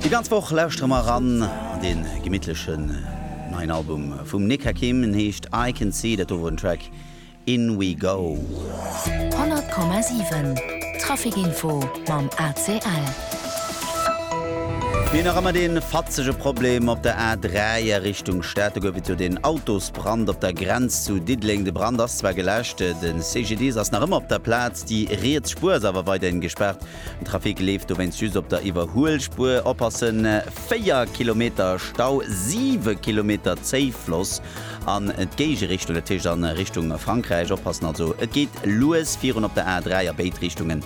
Déi ganz Woch lauschtere mer eran an dee gemittlechen neien Album vum Nick Hakim. En heescht I Can See. Dat do wor den Track In We Go. 100,7 Trafic Info mam ACL. Mir hunn nach ëmmer dee fatzege Problem op der A3 a Richtung Stad. Do gouf et jo deen Autosbrand op der Grenz zu Diddeleng. De Brand ass zwar geläscht, de CGDIS ass nach ëmmer op der Plaz, déi riets Spuer ass awer weiderhin gespaart. Den Trafic leeft dowéinst just op der Iwwerhuelspuer. Oppassen, 4 Kilometer Stau, 7 Kilometer Zéifloss an d'Géigerichtung, dat heescht a Richtung Frankräich. Oppassen also, et geet lues virun op der A3 a béid Richtungen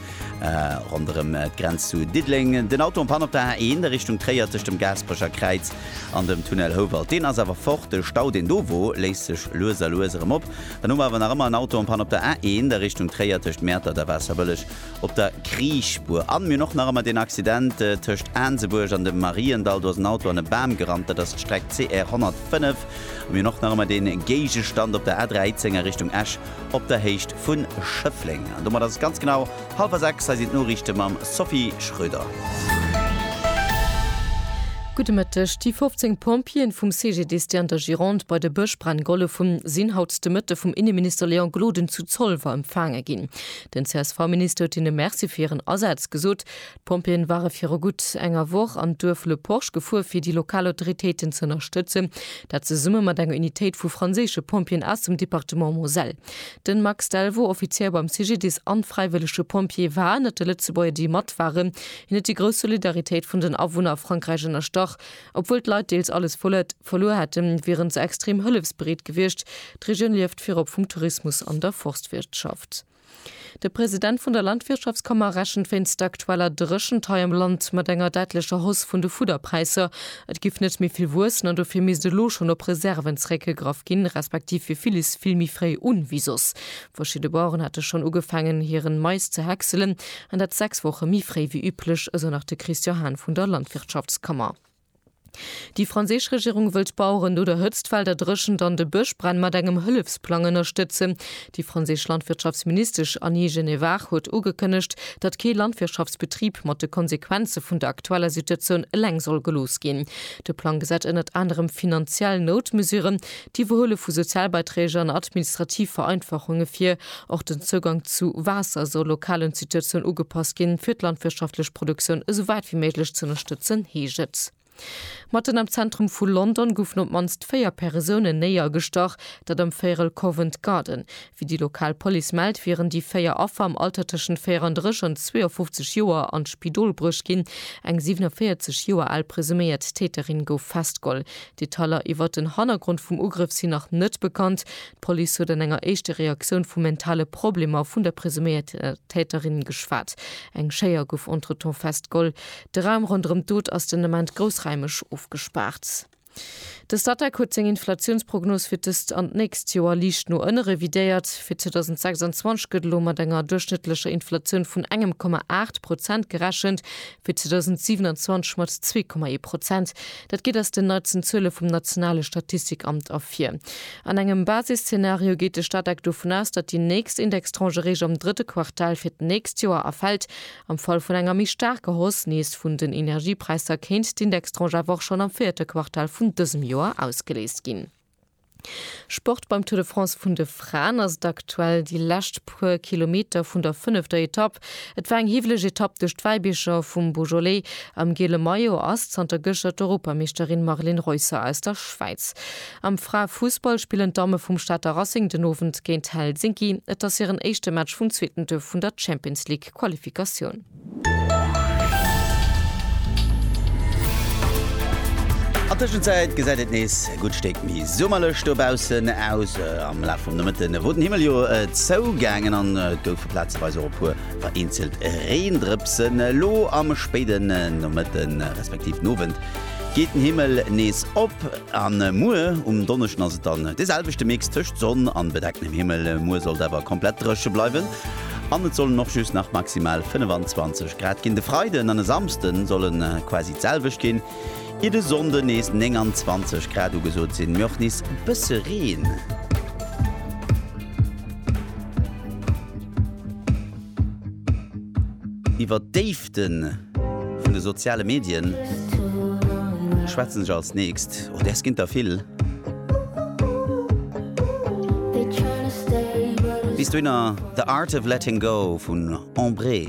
ronderëm d'Grenz zu Diddeleng. Den Auto en Panne op der A1 a Richtung Tréier tëscht dem Gaasperecher Kräiz an dem Tunnel Houwald. Deen ass awer fort. De Stau, deen do wor, léist sech lues a lues erëm op. Dann hu mer awer nach ëmmer en Auto en Panne op der A1 a Richtung Tréier tëscht Mäertert a Waasserbëlleg. Op der Kriichspuer an mir och nach ëmmer deen Accident tëscht Aansebuerg an dem Mariendall. Do ass en Auto an e Bam gerannt. Dat ass d'Streck CR 105. A mir och nach ëmmer dee Géigestand op der A13 a Richtung Esch op der Héicht vu Schëffleng. An domat ass et ganz genau hallwer sechs. Hei sinn d'Noriichte mam Sophie Schröder. Gudde Mëtteg. Déi 15 Pompjeeën vum CGDIS, déi an der Gironde bei de Bëschbränn gehollef hunn, sinn haut de Mëtte vum Inneminister Léon Gloden zu Zolwer empfaange ginn. Den CSV-Minister huet hinne Merci fir hiren Asaz gesot. D'Pompjeeën ware viru gutt enger Woch an d'Duerf Le Porche gefuer fir déi lokal Autoritéiten ze ënnerstëtzen. Dat zesumme mat enger Unitéit vu franséische Pompjeeën aus dem Departement Moselle. Den Max Delvaux, Offizier beim CGDIS an fräiwëllege Pompjee, war ënnert de Lëtzebuerger déi mat waren. Hien huet déi grouss Solidaritéit vun den Awunner a Frankräich ënnerstrach. Obwuel d'Leit deels alles vollet verluer hätten, wieren se extrem hëllefsbereet gewiescht. D'Regioun lieft virop vum Tourismus an der Forstwirtschaft. De President vun der Landwirtschaftskammer rechent wéinst der aktueller Dréchent hei am Land mat enger däitlecher Hausse vun de Fudderpräisser. Et géif net méi vill wuessen an dofir misst elo schonn op Reserven zeréckgegraff ginn, respektiv fir villes vill méi fréi un wéi soss. Verschidde Baueren hate schonn ugefaangen, hiren Mais ze häckselen, an dat sechs Woche méi fréi wéi üblech, esou nach de Christian Hahn vun der Landwirtschaftskammer. Déi franséisch Regierung wëll d'Baueren no der Hëtzt, Felder, Dréchent an de Bëschbränn mat engem Hëllefsplang ënnerstëtzen. Déi franséisch Landwirtschaftsministesch Annie Genevard huet ugekënnegt, datt kee Landwirtschaftsbetrib mat de Konsequenze vun der aktueller Situatioun eleng soll gelooss ginn. De Plang gesäit ënnert anerem finanziell Noutmesuren, D'Iwwerhuele vu Sozialbeiträg an administrativ Vereinfachunge fir och den Zougang zu Waasser soll lokalen Situatioun ugepasst ginn, fir d'landwirtschaftlech Produktioun esou wäit wéi méiglech ze ënnerstëtzen, heescht et. Matten am Zentrum vu London goufen op d'mannst véier Persounen néier gestach, dat am Véierel Covent Garden. Wéi déi lokal Police mellt, wieren déi véier Affer am Alter tëschent 34 an 52 Joer an d'Spidol bruecht ginn. Eng 47 Joer al presuméiert Täterin gouf festgeholl. Detailer iwwert den Hannergrond vum Ugrëff sinn nach net bekannt. D'Police huet an enger éischte Reaktioun vu mentale Problemer vun der presuméierter Täterin geschwat. Eng Schéier gouf entretemps festgeholl. De Raum ronderëm d'Dot ass den Ament groussraimeg ofgespaart. De Statec huet seng Inflatiounsprognos fir d'ëst an d'nächst Joer liicht no ënne revidéiert. Fir 2026 gëtt elo mat enger duerchschnëttlecher Inflatioun vun engem Komma aacht Prozent gerechent. fir 2027 mat 2,1 Prozent, dat geet aus den neitsten Zuele vum nationale Statistikamt ervir. An engem Basisszenario geet de Statec dovun aus, datt déi nächst Indextranche réischt am drëtte Quartal fir d'nächst Joer erfält. Am Fall vun enger méi staarker Hausse nees vun den Energiepräisser kéint d'Indextranche awer och schonn am véierte Quartal vun dësem Joer ausgeléist ginn. Sport, Beim Tour de France vun de Fraen ass et aktuell déi lescht puer Kilometer vun der fënnefter Etapp. Et war eng hiwweleg Etapp duerch d'Wäibiercher vum Beaujolais. Am giele Maillot ass zanter gëschter d'Europameeschterin Marlene Reusser aus der Schwäiz. Am Frae-Fussball spillen d'Damme vum Stater Racing den Owend géint Helsinki. Et ass hiren éischte Match vum zweeten Tour vun der Champions-League-Qualifikatioun. An Tëschenzäit gesäit et nees e gutt Stéck méi summerlech dobaussen aus. Am Laf vum Nomëtte wor den Himmel jo zougaangen an et goufe plazeweis och e puer vereenzelt Reendrëpsen. Elo am spéiden Nomëtte respektiv Nowend geet den Himmel nees op a muer um Donneschden ass et dann de selwechte Mix tëscht Sonn a bedecktem Himmel. Muer sollt awer komplett dréche bleiwen. An et sollen och just nach maximal 25 Grad ginn. De Freiden an e Samsde solle quasi d'selwecht ginn, ier de Sonnde nees 29 Grad ugesot sinn, mee och nees e bësse Reen. Iwwer déi. D'Déiften vun de soziale Medien schwätzen sech als nächst, oh däers ginn der vill. Bis dohinner The Art of Letting Go vun Embree.